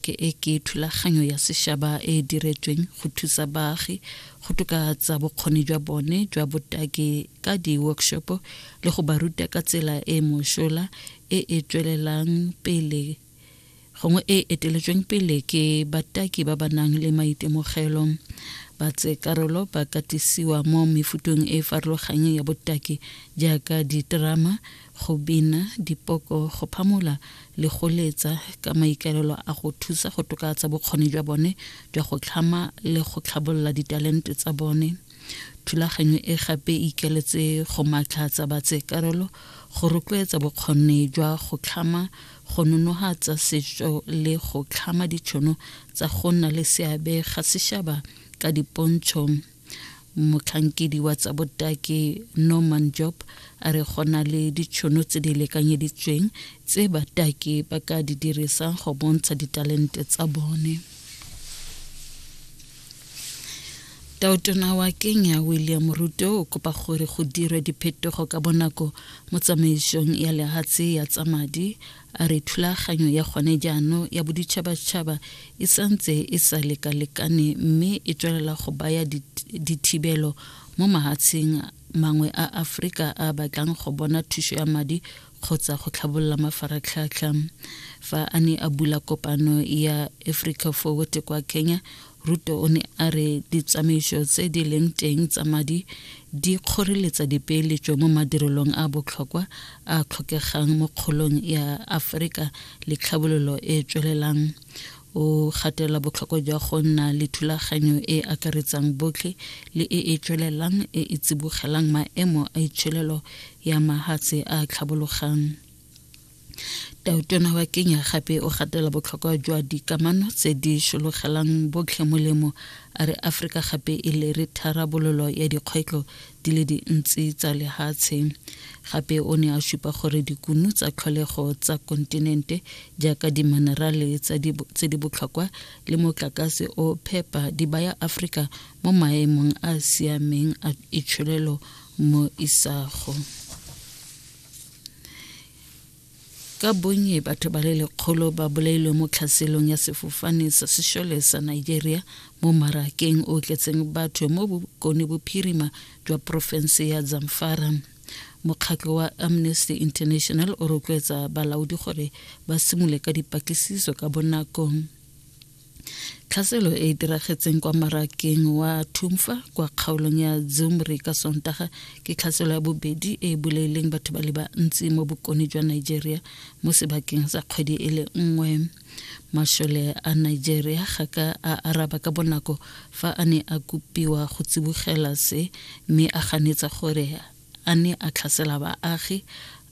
Ke e ke thulaganyo ya sešaba e e diretsweng go thusa baagi go tokatsa bokgoni jwa bone jwa botaki ka di-workshopo le go ba ruta ka tsela e e mosola e e tswelelang pele gongwe e eteletsweng pele ke bataki ba ba nang le maitemogelo ba tse karolo ba katisiwa mo mefutong e farologanyeng ya botaki jaaka diterama go bina, dipoko, go phamola le go letsa ka maikaelelo a go thusa go tokaatsa bokgoni jwa bone jwa go tlhama le go tlhabolola ditalente tsa bone. Thulaganyo e gape e ikeletse go matlhatsa batseekarolo, go rotloetsa bokgoni jwa go tlhama, go nonohatsa setso le go tlhama ditšhono tsa go nna le seabe ga sešaba ka dipontšho motlhankedi wa tsa botaki norman job a re go na le ditšhono tse di lekanyeditsweng tse bataki ba ka di dirisang go bontsha ditalente tsa bone taotona wa kenya william ruto o kopa gore go dirwe diphetogo ka bonako mo tsamaisong ya lehatshe ya tsa madi A re thulaganyo ya gone jaano ya boditšhabatšhaba e santse e sa lekalekane mme e tswelela go baya dithibelo mo mahatsheng mangwe a Afrika a batlang go bona thuso ya madi kgotsa go tlhabolola mafaratlhatlha fa a ne a bula kopano ya Africa Forward kwa Kenya Ruto o ne a re ditsamaiso tse di leng teng tsa madi di kgoreletsa dipeeletso mo madirelong a botlhokwa a tlhokegang mo kgolong ya Aforika le tlhabololo e e tswelelang. O gatelela botlhokwa jwa go nna le thulaganyo e e akaretsang botlhe le e e tswelelang e e tsibogelang maemo a itsholelo ya mahatshe a tlhabologang. tautona wa kenya gape o gatela botlhokwa jwa dikamano tse di shologelang botlhe molemo a re aforika gape e lere tharabololo ya dikgwetlho di le dintsi tsa lehatshe gape o ne a supa gore dikunu tsa tlholego tsa kontinente jaaka dimanerale tse di botlhokwa le motlakase o phepa di baya aforika mo maemong a a siameng a itsholelo mo isago ka bonnye batho ba le lekgolo ba bolailwe mo tlhaselong ya sefofane sa sešole sa nigeria mo marakeng o tletseng batho mo bokone bophirima jwa porofense ya zamfara mokgatlo wa amnesty international o rotloetsa balaodi gore ba simole ka dipatlisiso ka bonakong tlhaselo e e diragetseng kwa marakeng wa thumfa kwa kgaolong ya zumri ka sontaga ke tlhaselo ya bobedi e e bolaileng batho ba le bantsi mo bokone jwa nigeria mo sebakeng sa kgwedi e le nngwe mashole a nigeria ga ka a araba ka bonako fa a ne a kopiwa go tsibogela se mme a ganetsa gore a ne a tlhasela baagi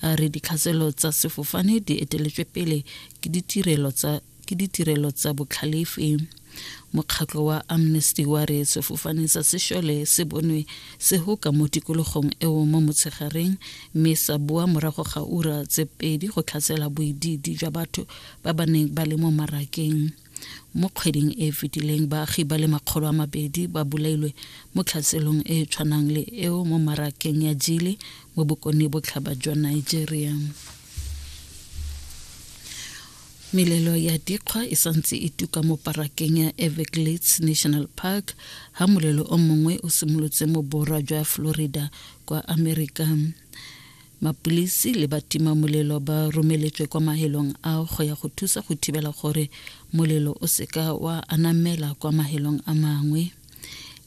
a re ditlhaselo tsa sefofane di eteletswe pele ke ditirelo tsa ke ditirelo tsa botlhalefe mokgatlho wa amnesty wa re sefofane sa sešole se bonwe se hoka mo tikologong eo mo motshegareng mme sa boa morago ga ura tse pedi go tlhatsela boididi jwa batho ba ba neng ba le mo marakeng mo kgweding e fetileng baagi ba le makgolo a mabedi ba bolailwe mo tlhaselong e e tshwanang le eo mo marakeng ya jile mo bokone botlhaba jwa nigeria Melelo ya dikgwa e santse e tuka mo parakeng ya Everglades National Park ha molelo o mongwe o simolotse mo borwa jwa Florida kwa Amerika. Mapulisi le batima molelo ba romeletswe kwa mahelong a go ya go thusa go thibela gore molelo o seka wa anamela kwa mahelong a mangwe.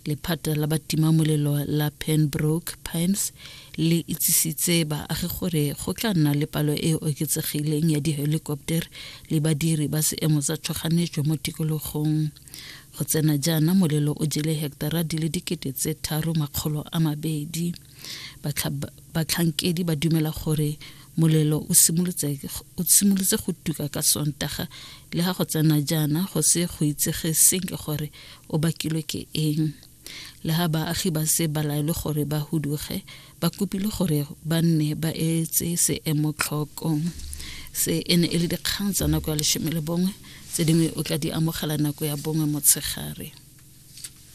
lephata la batimamolelo la penbrook pimes le itsisitse baagi gore go tla nna le palo e e oketsegileng ya di-helicopter le badiri ba seemo tsa tšhoganetso mo tikologong go tsena jaana molelo o jele hectara di le dikete tse tharo makgolo a mabedi batlhankedi ba dumela gore molelo o simolotse go tuka ka sontaga le ga go tsena jaana go se go itsege senke gore o bakilwe ke eng le ga baagi ba se ba laelwe gore ba huduge ba kopile gore ba nne ba etse seemo tlhokong se e ne e le dikgang tsa nako ya lesome le bongwe tse dingwe o tla di amogela nako ya bongwe motshegare